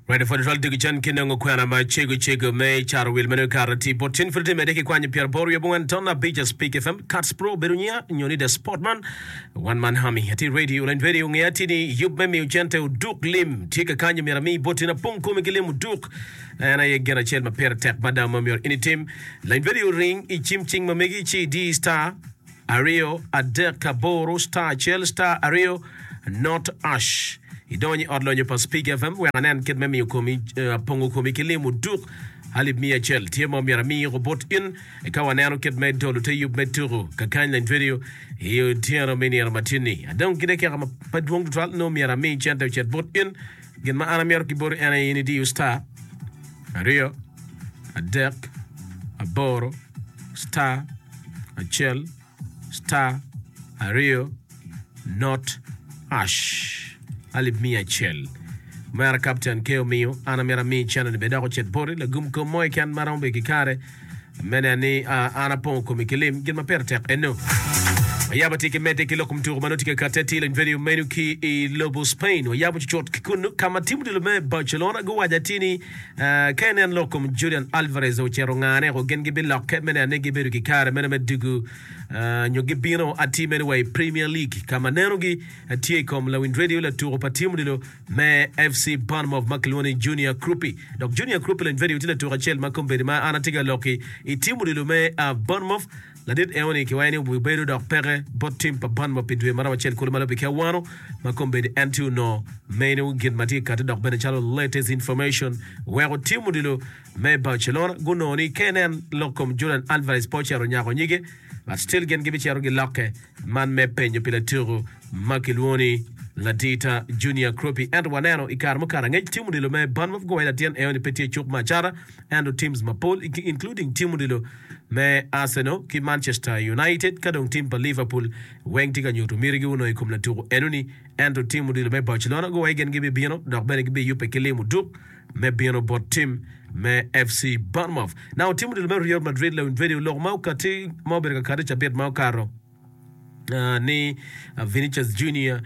Ready for the twelve digi cen ki nongo kwena ma cego cego me caro wil meno kare ti bot cin friti mede ki kwanyo pyera boro wiye bungan ton abica speak fm cuts pro bedo nyiya nyo ni the sport man one man hami ati ready orange ready onge ati ni yub me miyo cente oduk lim tye ka kanyo mira mi bot cin apong kome ki lim oduk en aye gen acel ma pire tek mada ma myero ini tim lain ready oring i cim cing ma megi ci di star aryo adek aboro star acel star aryo not ash idonyo i ot lonyo pa speak fm wek anen kit me miyo komi eh, pongo komi ki lim oduk alip miya acel tye mo myero amiyi obut in eka waneno kit me dolo te yub me tuku kakany lany radio i otyeno me nino matini adong kite keka ma pa dwong tutwal no myero amiyi cente ocet but in Gin ma an amito kiboti en aye in idiyo star aryo adek aboro star acel star aryo not hash alip miya acel. Omera Kapten Keo Miyo, an amito ami channel ni bed dok ocit boti lagum kom mo keken ma romo bedo ki kare. Me neno ni an apongo komi ki lim, gin ma pire tek enno. Wayaba tye ki medde ki loko mutuku ma nongo tye ka katte atir lony venue meno ki i lobo Spain. Wayabo cucut ki kunnu ka ma tim odilo me Barcelona guwaco atir ni ka ineno lok kom Julian Alvarez dong ocito ngane ko gin gibilokke me neno ni gibedo ki kare meno me dugu nyo gibino atir meno wa i Premier League ka ma nenogi tye i kom lawiny radio latuku pa tim odilo me FC Bournemouth ma kilwongo ni Junior Krupi. Dok Junior Krupi lony vedio tye latuk acel ma kombeddi ma an atye ka lok-ki i tim odilo me Bournemouth. Ladit eoni kiwayo ni obibedo dok peke bot tim pa Bournemouth pi dwe maromo acel kulu ma lobi ki awano ma kombeddi en tye onongo meno gin ma tye kati dok bene calo latest information weko tim odilo me Barcelona gunongo ni kenen lok kom Julian Alvarez pe ocito nyako nyige but still gin gibicito gilokke Man me penyo pi latiku ma kilwongo ni Ladita Junior Kroppi ento waneno i kare mukato angec Tim Odilo me Barn of Gower latin Eoni pe tye cuk me acata ento teams mapol including Tim Odilo me Arsenal ki Manchester United ka dong team pa Liverpool weng tye ka nyutu mitigi onongo i kom latuku enoni ento Tim Odilo me Barcelona Gower gin gibibino dok bene gibiyubbe ki limo duk me bino bot tim me FC Bournemouth. Naka otimo dul me Real Madrid, Leon Vedio lok ma okati ma obedo ka kati cabit ma okato ni Vinicius Junior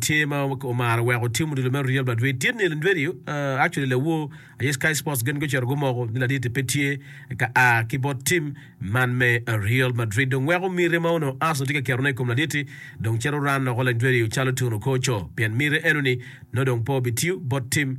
tye ma omaro wek otimo dul me Real Madrid. Tit ni Leon Vedio, actually lawo aye Sky Sports gin gucito gumoko ni laditi pe tye ka a ki bot tim man me Real Madrid. Dong weko miti ma onongo Arsenal tye ka keto ne i kom laditi dong cito ran loko Leon Vedio calo Tun Okocho pien miti eno ni nongo dong pe obitiyo bot tim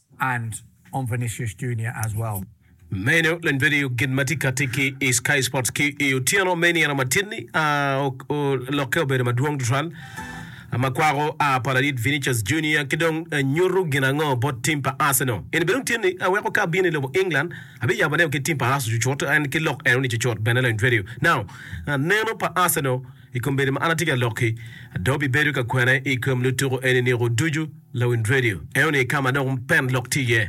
Meno en bedo gin ma tye ka tit ki i Sky Sports ki i otyeno me nino matidi. Olokke obedo madwong tutwal ma kwako pa ladit Vinicius Junior ki dong nyuto gin ango bot tim pa Arsenal? En bene otyeni aweko ka abino i lobo England abiyabo aneo ki tim pa Arsenal cucut, en ki lok enoni cucut bene. Neno pa Arsenal. I kombeddi ma an atye ka lok-ki, adong abibedo ka kwena i kom lutuku eni niko ducu, lawiny redio eno-ni i ka ma dong pen lok tye iye.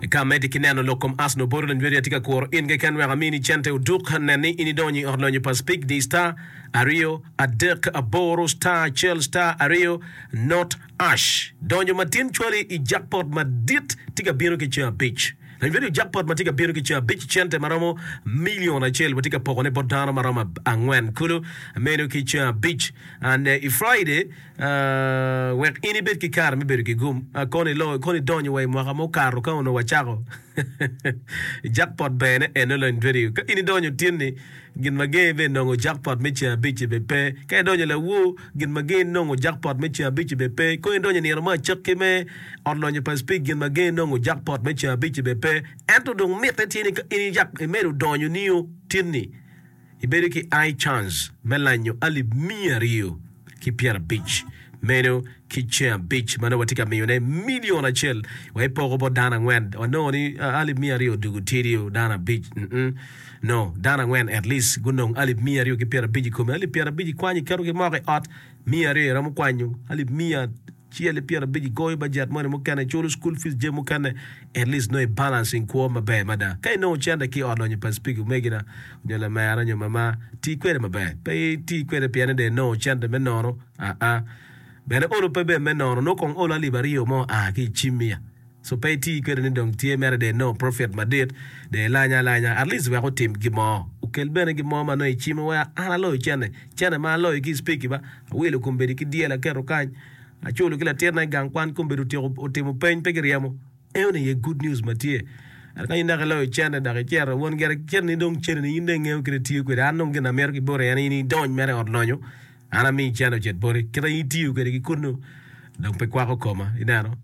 I ka ameddi ki neno lok kom Arsenal boti lawiny redio atye ka kuro in keken wek amini cente oduk, nen ni in idonyo i ot lonyo pa Speak di star, aryo, adek, aboro, star, acel, star, aryo, not, ash. Donyo matin cwali i jackpot madit tye ka bino ki ceng abic. Revenue jackpot ma tye ka bino ki ca abic cente ma romo milion acel watye ka poko ne bot dano ma romo angwen kulu meno ki ca abic and i Friday wek in ibed ki kare me bedo ki gum kono i loyo kono idonyo wa i mwaka mo kato ka onongo wacako jackpot bene eno lony radio ka in idonyo tin ni Gin ma gin ibbe nongo jackpot me ceng abic ci be pe ka idonyo i lawu gin ma gin nongo jackpot me ceng abic ci be pe kong idonyo i nino me acakki me ot lonyo pa speak gin ma gin nongo jackpot me ceng abic ci be pe ento dong mitte tye ni ka in iyak imedo donyo nio tin ni ibedo ki I chance me lanyo alip miya aryo. ki pyerabic meno ki ceng abic ma nongo watye ka miyone milion acel wa ipoko bot dano angwen wanongo ni alip miya aryo dugu tidi o dano abic mm no dano angwen at least gunong alip miya aryo ki pyerabic i kome alip pyerabic ikwanyo iketo ki moko i ot miya aryo iromo kwanyo alip miya Cel i pyer abic igoyo bajet moni mukene iculo school fees jami mukene at least nongo i balance in kwo maber mada ka inongo cente ki ot lonyo pa speak omegina nyo lamera nyo mama ti kwede maber pe iti kwede pien ni dong inongo cente me nono aa bene olo pe ber me nono nongo kong olo alip aryo mo aa ki i cim iya So pe iti kwede ni dong tye mere de inongo profit madit, de ilanye alanya at least wek otim gin mo. Okel bene gin mo ma nongo icimo wek an aloyo cene, cene ma aloyo ki icpeki ba, awilo kombedi ki dyel aketo kany, aculo ki latit na igang kwan kombedi otyeko otimo peny pe ki ryemo. Eone aye good news ma tye. Ento ka in dok iloyo cene dok icito, won gire cene ni dong cene ni in dong ingeyo kit itiyo kwede, an dong gin amito ki boti en ni in idony mere i ot lonyo, An ami cene ocit boti kit aye itiyo kwede ki kunu dong pe kwako koma ineno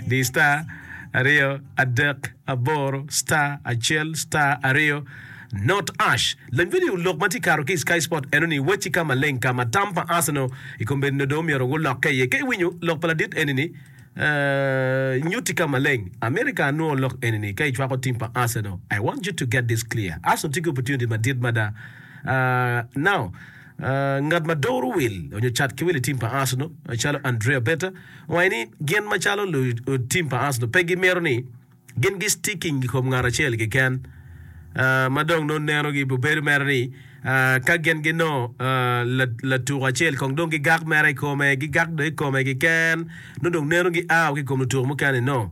di star aryo adek aboro star acel star aryo not ash lony video lok ma tye kato ki i sky sport eno ni wacci ka maleng ka ma tam pa Arsenal i kombeddi nongo dong omyero gulokke iye ka iwinyo lok pa ladit eni ni uh nyutti ka maleng America anwo lok eni ni ka icwako team pa Arsenal I want you to get this clear Arsenal tye ki opportunity madit mada Now, ngat ma doro wil onyo cat ki wil i tim pa Arsenal calo Andrea Beta owaco ni gin macalo lutim pa Arsenal pe gimito ni gin gi sticking i kom ngat acel keken ma dong nongo neno gi obedo mere ni ka gin ginongo latuko acel kong dong gigak mere i kome, gigak dong i kome keken nongo dong neno gi ao ki i kom lutuko mukene ni nongo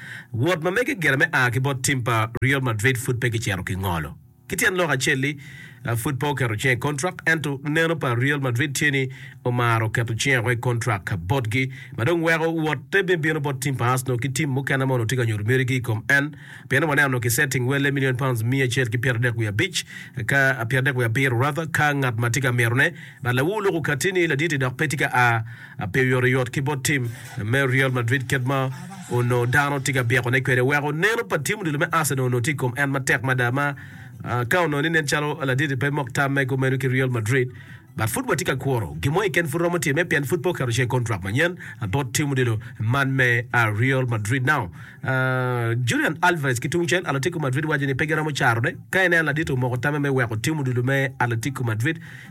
Wot ma mege gire me a ki bot tim pa Real Madrid pud pe kicito ki ngolo. Ki tyen lok acel-li, pud pe oketo cinge i kontrak, ento neno pa Real Madrid tye ni omaro keto cinge woko i kontrak botgi, ma dong weko wotte me bino bot tim pa Arsenal ki tim mukene ma onongo tye ka nyuto mitigi i kom en. Pien waneno onongo kisetting welle milion pounds miya acel ki pyeradek wiye abic, ka pyeradek wiye abiro rather, ka ngat ma tye ka mitone. But lawu loko katti ni laditi dok pe tye ka a. Ape oyotoyot ki bot tim me Real Madrid kit ma onongo dano tye ka byekone kwede? Weko neno pa tim odilo me Arsenal onongo tye i kom en matek mada ma ka onongo ni nen calo laditi pe mok tam mege meno ki Real Madrid. But pud watye ka kuro gin mo keken pud romo time pien pud pe oketo ceng i kontrak manyen bot tim odilo man me Real Madrid. Now, Julian Alvarez ki tungcel, Atletico Madrid waco ni pe giromo carone. Ka ineno laditi omoko tamme me weko tim odilo me Atletico Madrid,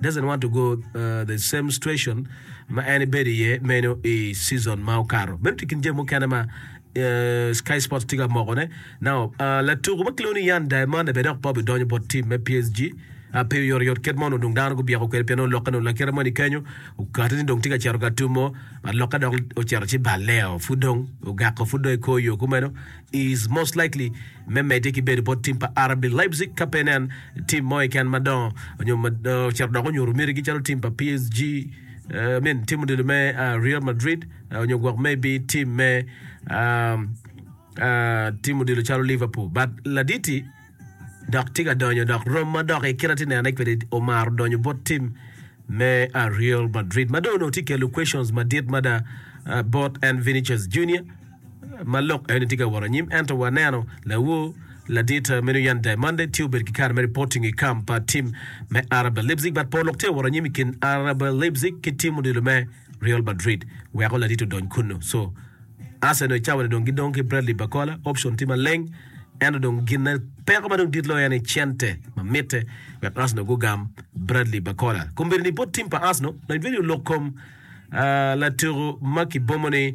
doesn't want to go the same situation ma en ibedo iye meno i season ma okato. Meno tye kin jami mukene ma Sky Sports tye ka moko ne. Now, latuko ma kilwongo ni Yan Diamande bene dok Bobby donyo bot team me PSG. Pe oyot oyot kit mono dong dano gubyeko kwede pien olokke dong lakite moni kenyo okate ni dong tye ka cito ka tumo alokke dok ocito ci baleo pud dong ogako pud dong ikor yo kumeno is most likely me medde ki bedo bot tim pa RB Leipzig ka pe nen tim mo keken madongo nyo ocito dok onyuto mitigi calo tim pa PSG, I mean tim odilo me Real Madrid nyo gwok maybe tim me tim odilo calo Liverpool but laditi. dok tye ka donyo dok rom ma doki kit ma atye nenone kwede omaro donyo bot tim me Real Madrid ma dong onongo tye kelo questions madit mada bot en Vinicius Junior ma lok eni tye ka wot anyim ento waneno lawo ladit meno Yan Diamande tye obedo ki kare me reporting i camp pa tim me RB Leipzig but pol lok tye ka wot anyim i kin RB Leipzig ki tim odilo me Real Madrid weko ladit odony kunnu. So, Arsenal i cawani dong gidong ki Bradley Barcola, option tye maleng, ento dong gin ma peko ma dong dit loyo en aye cente ma mitte wek Arsenal gugam Bradley Barcola. Kombeddi ni bot tim pa Arsenal, Nedved olok kom latuku ma kibomo ni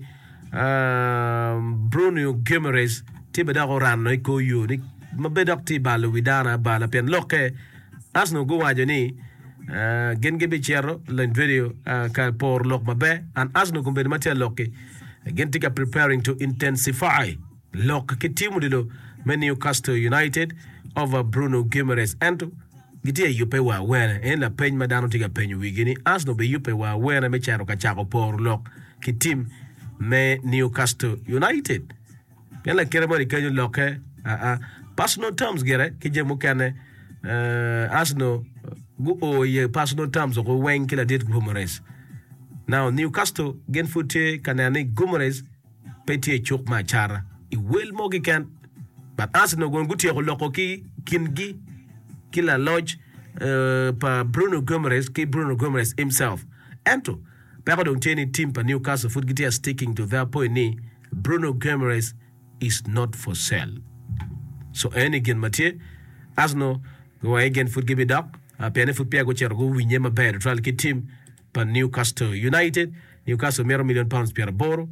Bruno Guimaraes tye bene dok orano i kor yo ni ma bene dok tye balo wi dano abala pien lokke Arsenal guwaco ni gin gibicito lony radio ka poro lok maber and Arsenal kombedo ma tye alok-ki gin tye ka preparing to intensify lok ki tim odilo me Newcastle United over Bruno Guimaraes ento gitye yubbe wa awene. En lapeny ma dano tye ka penyo wigi ni Arsenal biyubbe wa awene me cito ka cako poro lok ki tim me Newcastle United. Pien lakite moni kenyo lokke, aa, personal terms gire ki jami mukene, eh, Arsenal guo iye personal terms oko weng ki ladit Guimaraes. Now Newcastle gin pud tye ka neno ni Guimaraes pe tye i cuk me acara i wel mo kiken. But Arsenal gon gutyeko loko ki kingi ki laloc eh, pa Bruno Guimaraes ki Bruno Guimaraes himself. Ento peko dong tye ni team pa Newcastle pud gitye sticking to their point ni Bruno Guimaraes is not for sale so eni gin ma tye. Arsenal giwaco ni gin pud gibidok pienni pud peya gucito guwinye maber tutwal ki tim pa Newcastle United. Newcastle mito million pounds pyera boro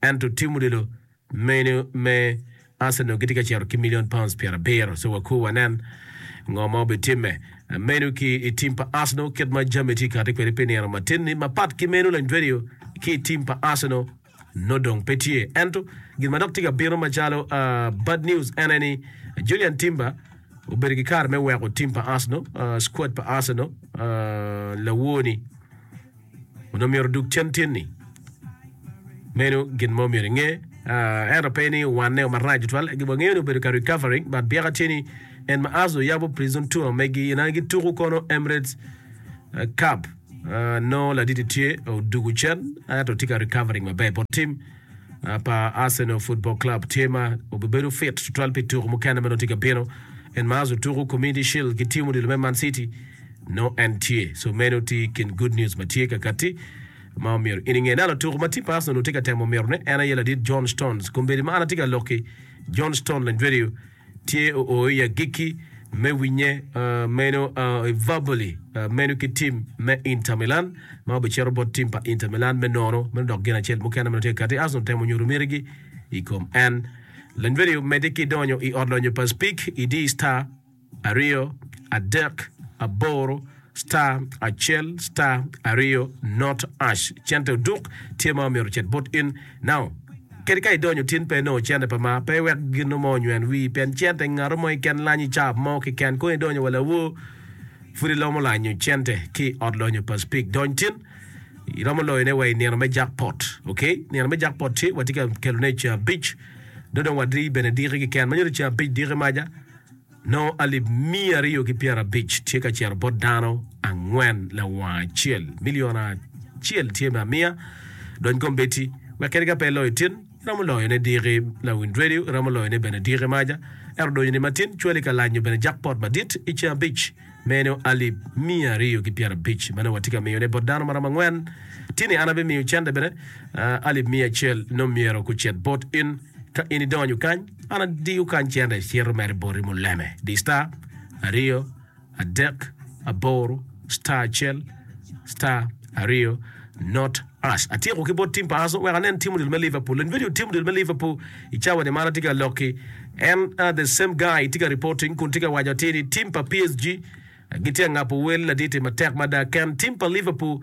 ento tim odilo meno me Arsenal gitye ka cito ki million pounds pyera abiro so wakur wanen ngo ma obitimme meno ki i tim pa Arsenal kit ma jami tye kati kwede pi nino matin ni mapat ki meno Lanjweriyo ki i tim pa Arsenal nongo dong pe tye. Ento gin ma dok tye ka bino macalo bad news en aye ni Julian Timber obedo ki kare me weko tim pa Arsenal, squad pa Arsenal lawor ni onongo myero odug cen tin ni meno gin mo myero inge. Ento pe ni owanne o marac tutwal, gi wangeyo ni obedo ka recovering but byeka tye ni en ma Arsenal yabo prison tour megi inani gituko kono Emirates Cup. Nongo Laditi tye odugu cen ento tye ka recovering maber bot tim pa Arsenal Football Club. Tye ma obibedo fit tutwal pi tuku mukene ma nongo tye ka bino. En ma azo tuku Community Shield ki tim odilo me Man City nongo en tye. So meno tye i kin good news ma tye kakatti ma omyero in inge. Nalo tuku ma tim pa Arsenal tye ka temo mito ne en aye ladit John Stones. Kombeddi ma an atye ka lok ki John Stone Lendwedio tye oo i agikki me winye meno i Verboli meno ki tim me Inter Milan ma obicito bot tim pa Inter Milan me nono meno dok gin acel mukene meno tye ka kati. Arsenal temo nyuto mitigi i kom en. Leny vidio omedde ki donyo i ot lonyo pa Speak idi star aryo adek aboro. star acel star aryo not ash cente oduk tye ma omyero ocit but in now kadi ka idonyo tin pe inongo cente pa ma pe wek ginu mo onywen wii pien cente ngato mo keken lanyi ca mo keken kong idonyo wa lawor pud ilomo lanyo cente ki ot lonyo pa speak dony tin iromo loyo ne wa i nino me jack pot ok nino me jack pot tye watye ka kelo ne ceng abic do dong wadri bene diki keken ma nyuto ceng abic diki maja Nongo alip miya aryo ki pyerabic tye ka cito bot dano angwen lawanga acel, milion acel tye me amiya. Dony kombeddi, wek kadi ka pe iloyo tin, iromo loyo ne diki Lawind Radio, iromo loyo ne bene diki Maja, ento odonyo ni matin cwali ka lanyo bene jackpot madit i ceng abic meno alip miya aryo ki pyerabic manongo watye ka miyo ne bot dano maromo angwen. Tini an abimiyo cente bene, alip miya acel nongo myero gucit bot in. Ka in idonyo kany, an adiyo kany cente icito mere boti muleme. Di star aryo adek aboro star acel star aryo not us. Atyeko ki bot tim pa Arsenal wek anen tim odilo me Liverpool. Lony video tim odilo me Liverpool i cawa ni man atye ka lokki. En uh, the same guy tye ka reporting kun tye ka waco atir ni tim pa PSG gitye ka ngabo wel laditi matek mada ken tim pa Liverpool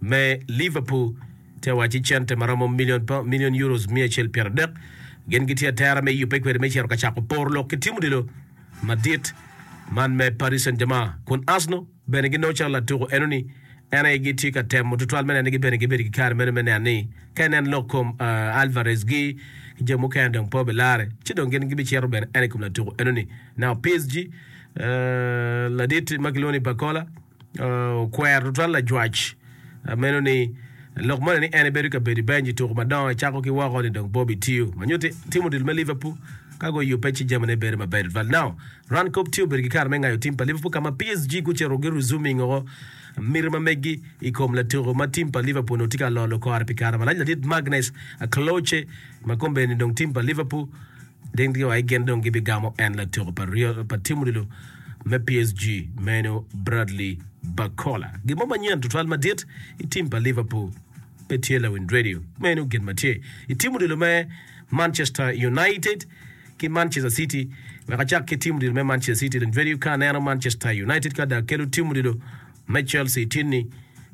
me Liverpool tye wacci cente ma romo milion pa milion Euros miya acel pyera dek. Gin gitye atera me yubbe kwede me cito ka cako poro lok ki tim odilo madit man me Paris Saint-Germain kun Arsenal bene ginongo calo latuko enoni en aye gitye ka temo tutwal me nene gibene gibedo ki kare meno me neno ni ka inen lok kom Alvarez gi ki jo mukene dong pe obilare ci dong gin gibicito bene en ikom latuko enoni. Now PSG ladit ma kilwongo ni Barcola. Okwer tutwal lajwac a meno ni lok moni ni en ebedo ka bedo i benc i tuku madongo cako ki woko ni dong Bobby tiyo ma nyuti tim odilo me Liverpool ka guyubbe ci jamine bedo maber tutwal. Now, Ran kop tye obedo ki kare me ngayo tim pa Liverpool ka ma PSG gucito gi resuming woko miti ma megi i kom latuku ma tim pa Liverpool onongo tye ka lolo kore pi kare malac ladit Magnus Akloche ma kombeddi ni dong tim pa Liverpool Ding ryo aye gin dong gibigamo en latyeko pa tim odilo me PSG meno Bradley Barcola. Gin mo manyen tutwal madit i tim pa Liverpool pe tye lawiny radio meno gin ma tye i tim odilo me Manchester United ki Manchester City. Wek acak ki tim odilo me Manchester City, lawiny radio ka aneno Manchester United ka da kelo tim odilo me Chelsea itinni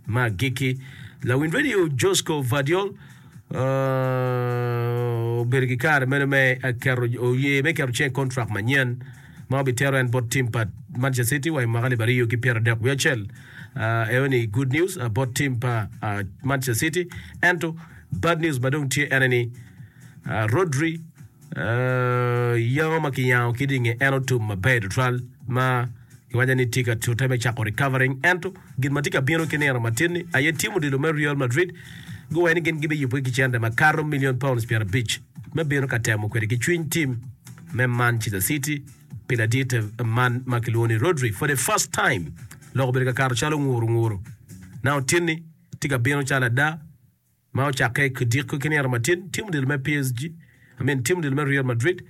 ma agikki. Lawiny radio Josko Vardiol obedo ki kare meno me keto oye me keto cing i kontrak manyen ma obitero en bot tim pa Manchester City wa i mwaka alip aryo ki pyera dek wiye acel. Uh, eo ni good news uh, bot tim pa uh, Manchester City. Ento bad news ma dong tye ene ni uh, Rodri Yamo ma kiyango kit i nge en otum maber tutwal ma kiwaco ni tye ka tute me cako recovering ento gin ma tye ka bino ki nino matin-ni aye tim odilo me Real Madrid guwaco ni gin gibiyubbe ki cente makato milion paunds pyerabic me bino ka temo kwede ki cwiny tim me Manchester City pi ladit man ma kilwongo ni Rodri for the first time lok obedo ka kato calo nguru nguru na otinni tye ka bino calo ada Ma ocakke ki odiko ki nino matin, tim odilo me PSG, I mean tim odilo me Real Madrid,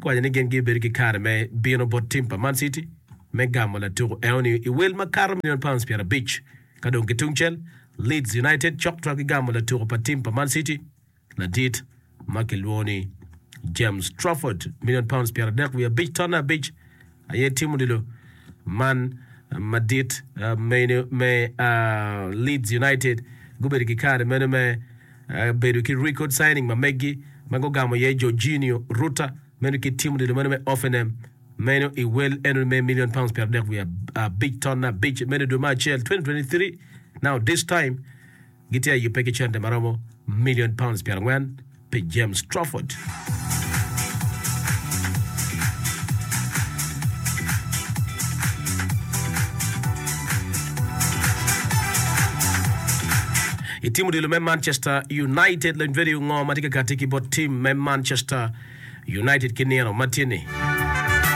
guwaco ni gin gibedo ki kare me bino bot tim pa Man City me gamo latuku eno-ni i wel makato milion paunds pyera abic. Ka dong ki tungcel, Leeds United cok twaggi gamo latuku pa tim pa Man City ladit ma kilwongo ni James Trafford, milion paunds pyera adek wiye abic tonne abic. aye timo dilo man madit meno me Leeds United gubedo ki kare meno me bedo ki record signing ma meggi ma gugamo iye Georginio Rutter meno ki timo dilo meno me Hoffenheim meno i wel eno me million pounds pyero adek wiye abic tonne abic meno i dwe me acel 2023 now this time gitye ka yubbe ki cente ma romo milion paunds pyerangwen pi James Crawford. I tim odilo me Manchester United, lony vedi ongo ma tye ka kati ki bot tim me Manchester United ki nino matye-ni.